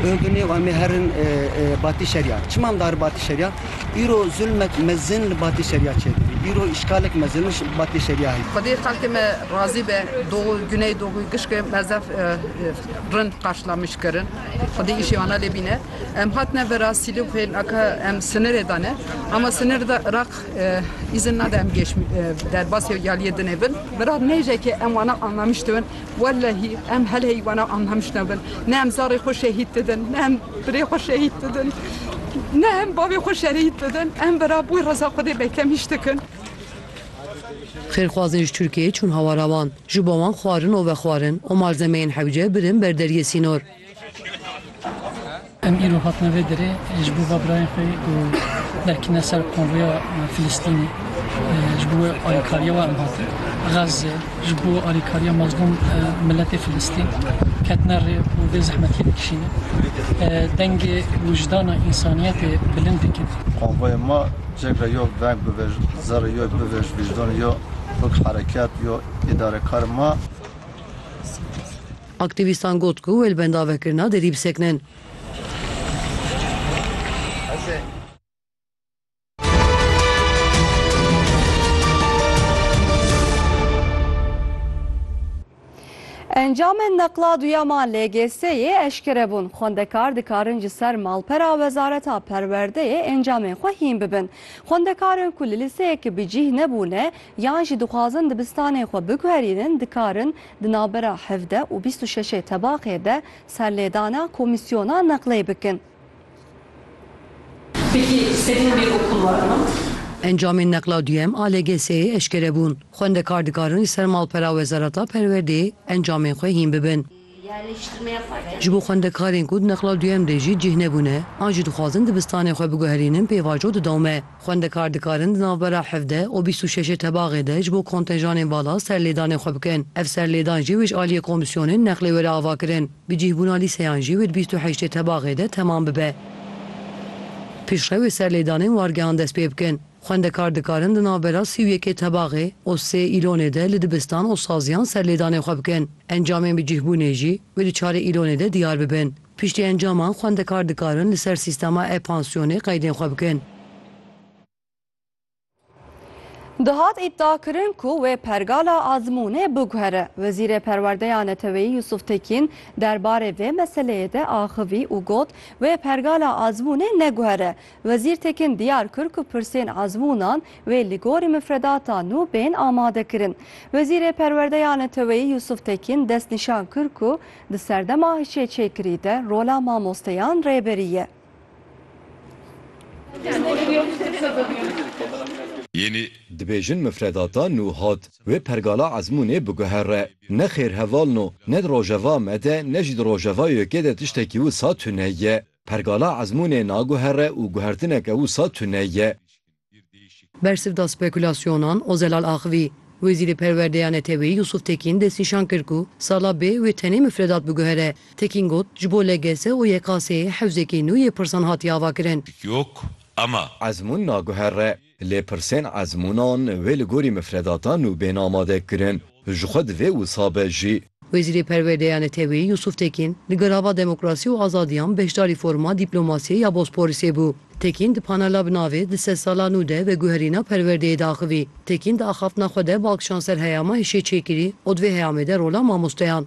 Binê wan mê herin batî şerya. Çima em diarin batî şerya? Îro zulmek mezin li batî şerya çêdibî. Îro îşkalek mezin li batî şerya heye. Xwedê xelkê me razî be. Doğu, Güney Doğu, gişkê me zef rind qarşilamiş kirin. Xwedê îşê wana lê bîne. Em hatine vera Sîlûf hê laka em sinirê de ne. Ama sinir de Iraq îzin nade em gêş derbasê ya liyê dinê bin. Vera nêjekê em wana anlamiş dibin. Wellehî em hel heywana am hem jina bin. Ne em zarê xwe şehîd didin, ne em birê xwe şehîd didin, ne em bavê xwe şerhîd didin. Em bira bo reza Xwedê bekem îş dikin. Xêrxwazên ji Tirkiyeyê çûn hawara wan. Ji bo wan xwarin û vexwarin û malzemeyên hewce birin ber deriyê sînor. Em îro hatine vê derê ji bo va birayên xwe ku derketine ser konvoya Filistînê ji bo wê alîkariya wan hatin. Gaze ji bo alîkariya mazlûm miletê Filistîn ketine rê û vê zehmetiyê dikişîne. Dengê wijdana însaniyetê bilind dikin. Konvoya me cih re yo veng bivêj, zerre yo bivêj, vîjdanê yo wek herekat yo îdarekarên me. Aktîvîstan got ku wê li benda vekirina derî bisekinin. Encamên neqla duyem a LGS'ê eşkere bûn. Xwendekar dikarin ji ser malpera Wezareta Perwerdeyê encamên xwe hîn bibin. Xwendekarin ku li lîseyekî bi cîh nebûne yan jî dixwazin dibistanên xwe biguherînin dikarin Di navbera hevde û bîst û şeşê tebaxê de serlêdana komîsyona neqlê bikin. Peki istediğin bir okul var mı? Encamên neqla duyem a LGS'ê eşkere bûn. Xwendekar dikarin li ser malpera Wezareta Perwerdeyê encamên xwe hîn bibin. Ji bo xwendekarên ku di neqla duyem de jî cih nebûne, an jî dixwazin dibistanê xwe biguherînin pêvajo didome. Xwendekar dikarin di navbera hevdeh û bîst û şeşê tebaxê de ji bo kontenjanên vala serlêdanê xwe bikin. Ev serlêdan jî wê ji aliyê komîsyonên neqlê were avakirin. Bi cihbûna lîseyan jî wê di bîst û heştê tebaxê de temam bibe. Piştre wê serlêdanên wargehan dest pê bikin. Xwendekar dikarin di navbera sî û yekê tebaxê û sê îlonê de li dibistan û saziyan serlêdanê xwe bikin. Encamên bi cihbûnê jî wê di çarê îlonê de diyar bibin. Piştî encaman xwendekar dikarin li ser sîstema e-pansyonê qeydên xwe bikin. Dihat îdiakirin ku wê pergala azmûnê biguhere. Wezîrê Perwerdeya Neteweyî Yusuf Tekîn der barê vê meseleyê de axivî û got, Wê pergala azmûnê neguhere. Wezîr Tekîn diyar kir ku pirsên azmûnan wê li gorî mifredata nû bên amadekirin. Wezîrê Perwerdeya Neteweyî Yusuf Tekîn destnîşan kir ku Di serdema hişêçêkirî de rola mamosteyan rêberî ye. Dibêjin mifredata nû hat wê pergala ezmûnê biguhere. Ne xêrhevalno, ne di rojeva me de ne jî di rojeva YK'ê de tiştekî wisa tune ye. Pergala ezmûnê naguhere û guhertineke wisa tune ye. Bersivda spekulasyonan Ozelal axivî. Wezîrê Perwerdeya Neteweyî Yusuf Tekîn destnîşan kir ku sala bê wê tenê mifredat biguhere. Tekîn got, Ji bo LGS û YKS'ê hewzekî nû yê pirsan hatiye avakirin. Ezmûn naguhere, lê pirsên ezmûnan wê li gorî mifredata nû bên amadekirin. Ji xwe divê wisa be jî. Wezîrê Perwerdeyê ya Neteweyî Yûsûf Tekîn li gel hava demokrasî û azadiyan beşdarî foruma Dîplomasiyê ya Bosporisê bû. Tekîn di panela bi navê Di sed sala nû de veguherîna perwerdeyê de axivî. Tekîn di axaftina xwe de balkişan ser heyama hişê çêkirî û di vê heyamê de rola mamosteyan.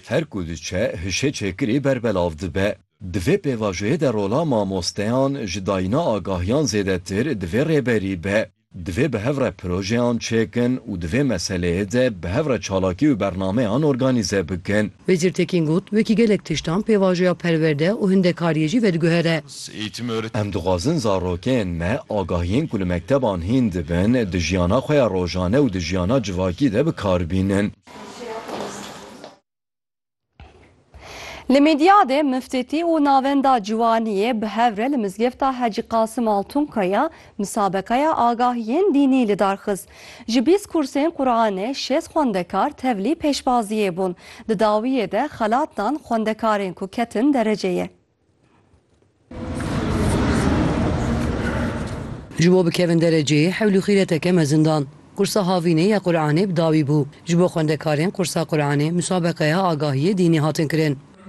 Her ku diçe hişê çêkirî berbelav dibe. Di vê pêvajoyê de rola mamosteyan ji dayîna agahiyan zêdetir divê rêberî be. Divê bi hev re projeyan çêkin û di vê meseleyê de bi hev re çalakî û bernameyan organîze bikin. Wezîr Tekîn got, Wekî gelek tiştan pêvajoya perwerde û hindekariyê jî vediguhere. Em dixwazin zarokên me agahiyên ku li mekteban hîn dibin di jiyana xwe ya rojane û di jiyana civakî de bi kar bînin. Li Mîdyadê Miftîtî û Navenda Ciwaniyê bi hev re li Mizgefta Hecî Qasim Altunkaya misabeqeya agahiyên dînî lidar xist. Ji bîst kursên Quranê şêst xwendekar tevlî pêşbaziyê bûn. Di dawiyê de xelat dan xwendekarên ku ketin dereceyê. Ji bo bikevin dereceyê hewlî xîreteke mezin dan. Qursa Havînê ya Quranê bi dawî bû. Ji bo xwendekarên qursa Quranê musabeqeya agahiyê dînî hatin kirin.